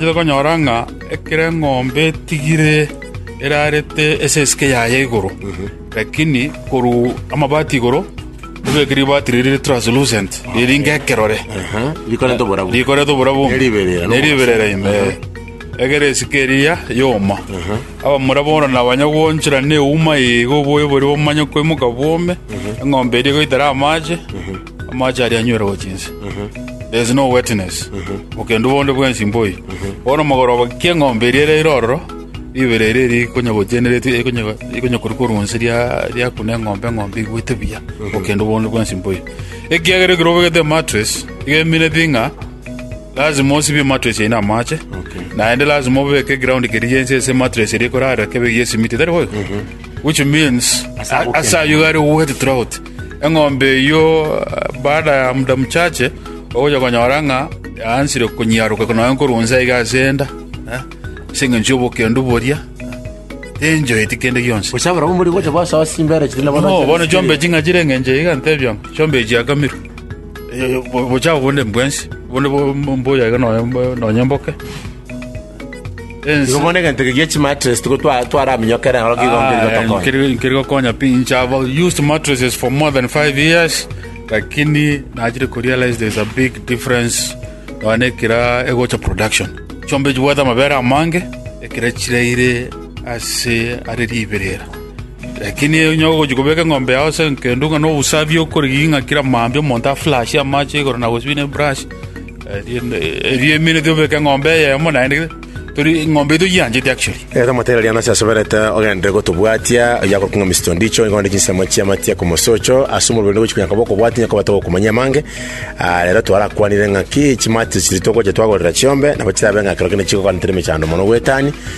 Tari konyora ng'a ekero eng'ombe etigire erarete ase esike yaye igoro, lakini korwa amabati igoro ebeke ribati riria rire translucent, riri ng'ekerore, Aha, rikorete oborabu. rikorete oborabu Neriberera, no? neriberera ime eh. egere esike eria yoma abamura bono nabanya gwanchera neuma igo oboyo boria bomanye koimoka bwome eng'ombe eria egoitera amache Amache aria anywerwa chinse. There is no wetness. Okendu bonde bwensi mboi. Bono mogoroba kia eng'ombe eria ere ire ororo, ribera eria eri konya gocheneretie ekonya ekonya koru koru onsi ria ria kuna eng'ombe eng'ombe igwete buya. Okendu bonde bwensi mboi. Ekiagera ekero obegete mattress, iga emineti ng'a lazima osibie mattress eye na amache. Okay. Naende lazima obeke ground keri yensi ase mattress eria ekorara kebe yesimiti. Tari boigo? Which means Ase agokenda. asa ayuga are wet throughout. Eng'ombe eyio baada ya muda mochache ogocha konyora ng'a yaansire konyiaroka nonya korwa inse aiga ase enda, ase engencho y'obokendu boria tenchoeti kende gionsi. Gose abarabwo mbori gocha basoa chimbere chiria nabo Bono, bono chiombe ching'a chire engencho iga ntebia ng'a chiombe echi chiakamirwe. Eh, bo- bochabo bonde mbwensi, bonde bo- mbuya iga nonya mbo- nonya mboke. Igo bono egento eke gie chimatress tigo twa- twaraminyokere naro kigo nkeri gotokonya. nkeri nkeri gokonya pi inche have used mattresses for more than five years lakini nachire kurealize there's a big difference nonya na ekira egocha production chiombe chibwate amabere amange ekira chiraire ase are riberera lakini onye ogochi kobeka eng'ombe yao ase kendo ng'a na obusabi okorigi ng'a kira maambia omonto aflashe amache igoro na gosibina ebrush Erio eminwe tobeke eng'ombe eyemo naende, tori eng'ombe eyio toyiancheti actually. Erio omotebia riria nase asoberete ogenderere gotobwatia, oyio akorokwa ng'a Mister Ondicho, nigo onde chinsemo chi'amatia komosocho ase omobere onde gochika nyakoboko obwate onye kobata gokumanyia amange. Ah, rero twarakwanire ng'a ki chimatia chiria togocha twagorera chiombe, nabo chirabe ng'a ekero kende chigokwana tari mechando mono goetania,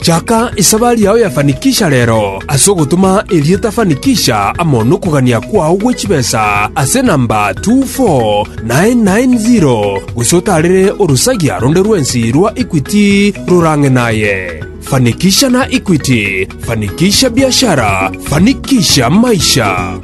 Chaka esabari yao ya Fanikisha rero, ase ogotoma erieta Fanikisha amo nokogania kwao gwe chibesa ase enamba 24990, gose otaarere orosagia ronde rwensi rwa Equity rorang'e naye. Fanikisha na Equity, fanikisha biashara, fanikisha maisha.